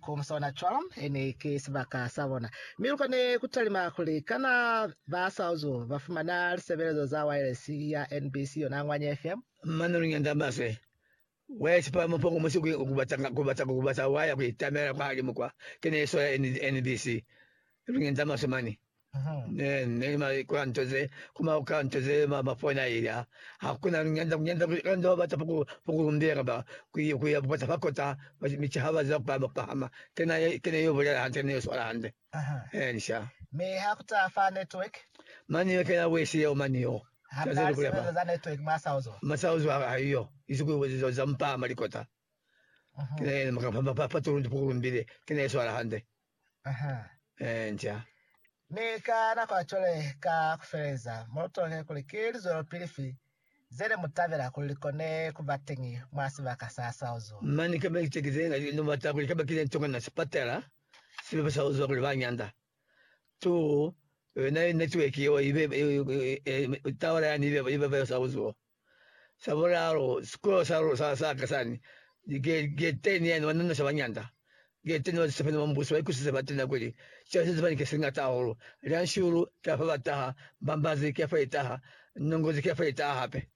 Ku sona cwalo, e ne ki sibaka sa bona. Mi lu kone ku talima kuli, Kana ba Saozulu ba fumana lisebelezo za waelesi ya NBC yona Ngwanye FM? Mane lu nyanda maswe, wa isipa mupongo mwa siku ku bata ku bata wa ya ku itamela kwa limu kwa. Ki ne sola NBC. Lu nyanda maswe mane. Ne, ne mali kwa nto ze kuma ka nto ze ma mafona ila hakuna nyanda nyanda kanda wa bata puku puku lumbera ba kuya kuya bukota bakota michi haba za kwa mapahama tena tena yo bulela hande ne swala hande eh nisha me hakuta fa network mani yo kena wesi yo mani yo Habari sebe za network masauzo masauzo ayo izuku za za mpama likota kene makapamba pa pa tulundi puku lumbire tena swala hande Nca. Mi ka nako ya cwale, ka kufeleza, mulotohe kuli ki lizwelopili fi ze ne mu tabela kuli li kone ku ba teñi mwa sibaka sa sa uzwa. Mane kamba ki ceki ze nga no bata kuli kaba ki ne nto kana sipatala sibebe sa uzwa kuli ba nyanda tu yona network yeo ibe, tawara yani ibe, ibe sa uzwa. Sa bulalu, sikolo sa lu, sa, sa ka sani, ni ge, gete ni yani ba nonoša bañanda. Gete ni batusapeni ba Mbuso ba ikusisa batena kuli, Cwale se sebani ke se ñata hahulu. Lianshulu, ki afa ba taha, mbambazi, ki afa i taha, nongozi, ki afa i taha hape.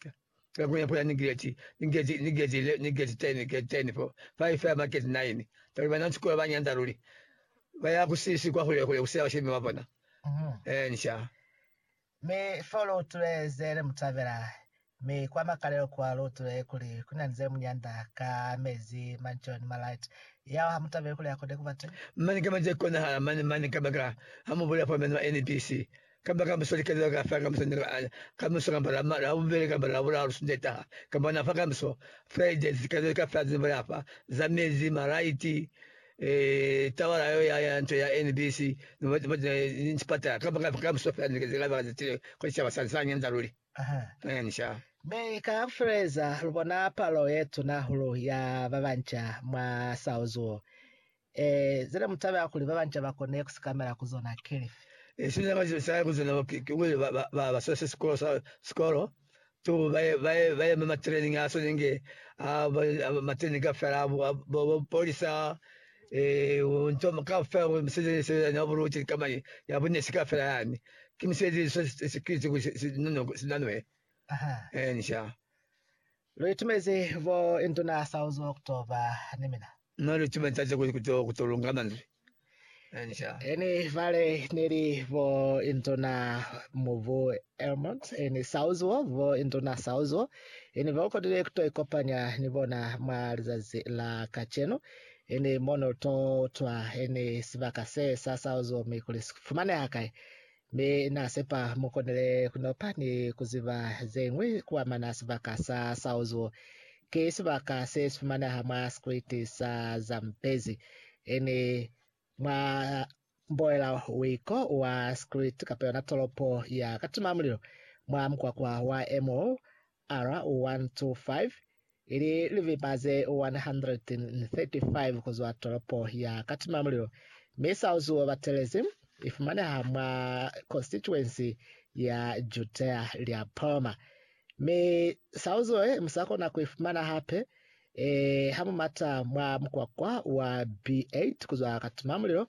Ka nakong ya pula ni geti, ni geti, ni geti, le, ni geti teni, geti teni, fo, fa i fela maketi naini. Kakuli bana ba sikolo ba ñanda luli. Ba ya ku sisi, kwa hule, hule, ku sila bashemi ba bona. Eeni, sha. Mi fo lu utule ze ne mu tabela, mi kwa makalelo kwa lu utule kuli ku na ni ze mu nyanda ka mezi, mansion, malite. Yao ha mu tabeli kuli a kone ku ba teñi? Mane kamba ze konahala mane, mane kabakala ha mu bulela fo meno a NBC, kamba ka muso likelelo ka fela ka muso ni la, ka muso kamba la, la bubeli kamba la bulalu Sunday taha, kamba na fa ka muso Friday, likelelo ka fela ze ni bulela fa, za mezi, malite, Eh, tabala yo ya ya nto ya NBC no ba ba ni sipatala ka ba ka musofa ni ke zela ba za tile ko sitaba sa sa nyanza luli. Aha. Eh, ni sha. Mi ka fuleza lu bona palo ye tuna hulu ya ba banca mwa sao zuo. Eh, zene mu tabela kuli ba banca ba kone ku sikamela ku zona kelifi? Eh, sina ba sa ku zona ki ki ba ba ba ba so se sikolo sa sikolo. to ba yema matraining a sone nge matraining ka fela bo polisa eh nto ka fela bo misezi se na bulu ti kama ya bunne se ka fela yani ke misezi so security ku no sinanwe eh nisha lo itumeze bo intona south october ni mina Mwa lu tuma ntate kuli kuto kuto lunga manzwi ani sha. Eni vale neli bo intona mubu Elmont eni sauzuo bo intona sauzuo eni ba ukodile kuto ikopanya ni bona mwa lizazi la kacenu eni mono to utwa eni sibaka se sa sauzuo mi kuli si fumaneha kai Mi Na sepa mu konile kunopa ni kuziba zeñwi kuamana sibaka sa Saozu. Ki sibaka se sifumaneha mwa sikriti sa Zambezi, ini mwa mboela wiko wa sikriti kapa yona tolopo ya katima mulilo, mwa mukwakwa wa MOR125, ili lipipa ze 135 ku zwa tolopo ya Katimamulilo, mi Sauzuo Batelezi i fumaneha mwa konsituensi ya Jutea lya Palma. Mi Sauzuo ye mu sa kona ku i fumana hape ee ha mu mata mwa mukwakwa wa B8 ku zwa Katimamulilo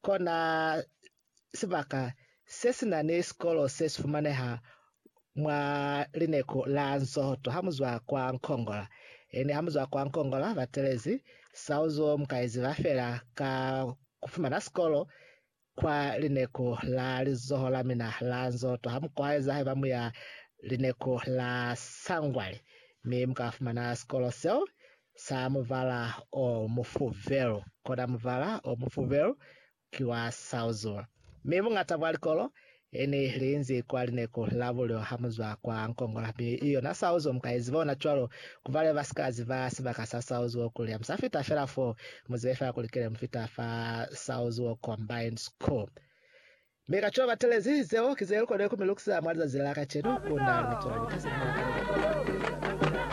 Kona sibaka se si na ni sikolo se si fumaneha mwa lineku la Nsohoto ha mu zwa kwa Nkongola. Ene ha mu zwa kwa Nkongola ba telezi sao zo mu ka iziba fela ka ku fumana sikolo kwa lineku la lizoho la mina la Nsohoto. Ha mu kwaeza haiba mu ya lineku la Sangwali mi mu ka fumana sikolo seo sa mubala o mufubelu, kona mubala o mufubelu ki wa sauzuma. Mi buñata bwa likolo he ni li nzi kwa lineku la bulyo ha mu zwa kwa Nkongola, mi i yona sauzuo mu ka i ziba ona cwalo, ku ba le ba si ka ziba sibaka sa sauzuo kuli ha mu sa fita fela foo, mu zibe fela kuli ki le mu fita fa Sauzuo Combined School. Mi ka cwalo batelezi, zeo ki ze lu konile ku mi lukisa mwa lizazi la kacenu, ku na ni cwalo lika se ni nyakile.